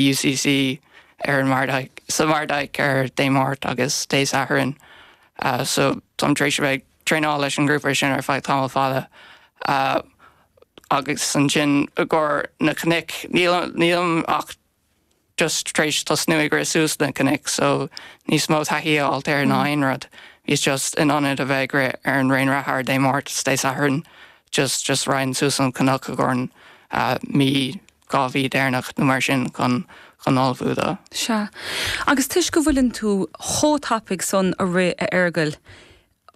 UCC ar an Mardyke, sa Mardyke ar Dé Máirt agus Dé Sathairn so táim tar éis a bheith ag traenáil leis an ngrúpa sin ar feadh tamall fada agus ansin i gcomhair na cnoic, nílim ach just tar éis tosnú ag rith suas na cnoic so níos mó taithí a fháilt air ná aon rud. Bhíos just in ionad a bheith ag rith ar an raon reatha ar Dé Máirt 's Dé Sathairn just just run suas an cnoc i gcomhair mí dhá mhí deireanach nó mar sin chun chun ullmhú dó. Sea. Agus toisc go bhfuileann tú chomh tapaidh san ag rith, a Fhearghail,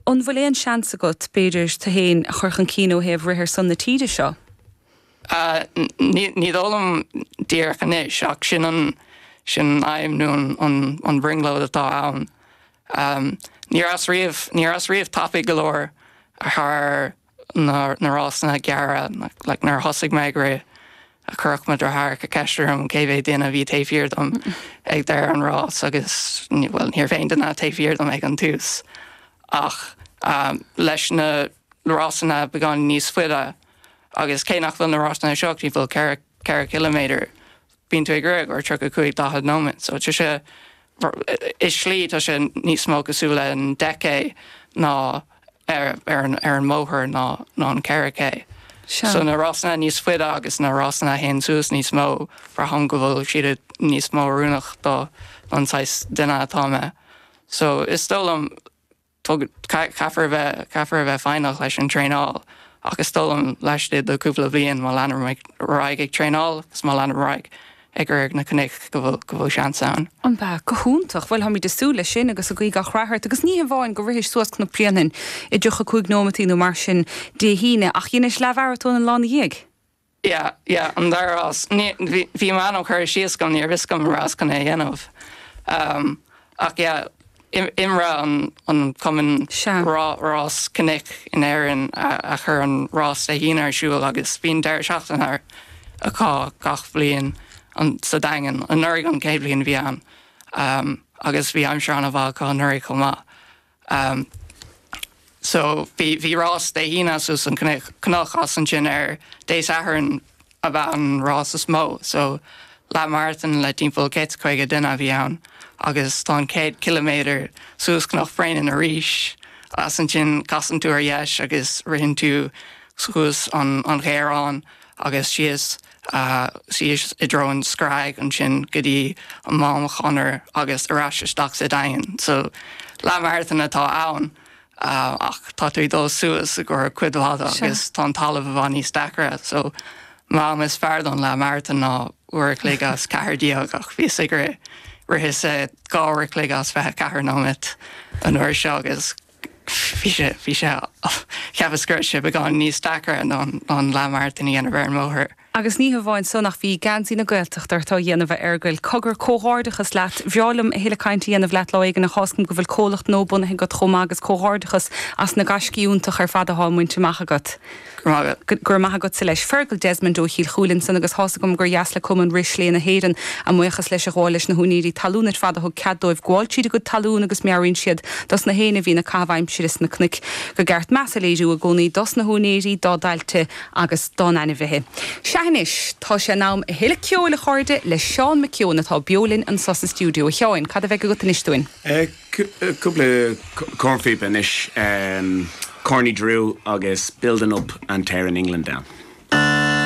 an bhfuil aon seans agat, b'fhéidir, tú fhéin a chur chun cinn ó thaobh rith ar son na tíre seo? Ní dóigh liom díreach anois, ach sin an sin an aidhm nó an an an bhrionglóid atá ann. Ní rabhas riamh, ní rabhas riamh tapaidh go leor thar. na rásanna gearra, like nuair a thosaigh mé ag rith, chuireadh mo dheartháireacha ceist orm cé mhéad duine a bhí taobh thiar dom ag deireadh an rás agus bhuel ní raibh aon duine taobh thiar dom ag an tús ach leis na rásanna beagáinín níos faide agus cé nach bhfuil na rásanna seo, bhuel ceithre, ceithre chiliméadar, Bíonn tú ag rith i gcomhair 35 40 nóimeat so tá sé, i slí tá sé níos mó cosúil le an 10K ná ar ar an mbóthar ná ná an 4K. So na rásanna níos faide agus na rásanna a théann suas níos mó, braithim go bhfuil siad níos mó oiriúnach do don saghas duine atá mé. So is dóigh liom, Caithfear a bheith, caithfear a bheith foighneach leis an traenáil ach is dóigh liom laistigh de cúpla bliain má leanaim ar aghaidh ag traenáil agus má leanaim ar aghaidh ag rith na cnoic go bhfuil seans ann. Ó bha, go hiontach. Bhuel táimíd ag súil leis sin agus ag guí gach rath ort agus ní hamháin go rithis suas Cnoc Bréanainn i dtríocha cúig nóimeataí nó mar sin Dé hAoine ach dheinis leath-mharatón an lá ina dhiaidh. Yeah, yeah, an dara rás. Bhí m'ainm curtha síos agam, ní raibh a fhios agam an rabhas chun é a dhéanamh. Ach yeah, IMRA an Cumann rás cnoic in Éirinn a chur an rás Dé hAoine ar siúl agus bíonn deireadh seachtaine acu gach bliain sa Daingean. Anuraidh an chéad bhliain bhí ann agus bhí aimsir an-mhaith acu anuraidh chomh maith. Umm so bhí bhí rás Dé hAoine suas an cnoc is ansin ar Dé Sathairn ab ea an rás is mó so leath marathon le timpeall céad is caoga duine a bhí ann agus tá an chéad ciliméadar suas Cnoc Bhréanainn arís is ansin casann tú ar dheis agus ritheann tú suas an an Ghéarán agus síos síos i dtreo an Sráidbhaile, ansin go dtí an gConair agus ar ais isteach sa Daingean. So leathmharatón atá ann ach tá tú ag dul suas i gcóir cuid mhaith de agus tá an talamh i bhfad níos deacaire. So m'am is fearr don leathmharatón ná uair a chloig is ceathair déag ach bhíos ag rith, ritheas dhá uair a chloig is fiche ceathair nóimeat an uair seo agus. bhí sé, bhí sé, cheapas go raibh sé beagán níos deacra ná an leathmharatón a dhéanamh ar an mbóthar. Agus ní hé amháin san ach bhí geansaí na Gaeltachta ort á dhéanamh, a Fhergail. Cogar, comhghairdeachas leat. Bhreá liom a thuilleadh cainte a dhéanamh leat lá éigin ach thá's agam go bhfuil comhlacht nua bunaithe agat chomh maith agus comhghairdeachas as na gaiscí iontach ar fad athá á mbaint amach agat. Go raibh maith agatsa leis. Fergal Desmond ó Chúil Chuilinn san agus thá's agam gur dheas le Cumann Rith Sléibhe na hÉireann a mbuíochas leis a ghabháil leis na húinéirí talún ar fad a thug cead dóibh gabháil tríd a gcuid talún agus meabhraíonn siad dos na héinne a bhíonn ag caitheamh aimsire sna cnoic go gur ceart meas a léiriú i gcónaí dos na húinéirí, dá dtailte agus dá n-ainmhithe. Sea anois, tá sé in am a thuilleadh ceoil a chairde le Seán McKeown atá beo linn anso sa stiúideo. A Sheáin, cad a bheidh agat anois dúinn? Cúpla cornphíopa anois, Corny Drew agus Building Up An Tear in England Down.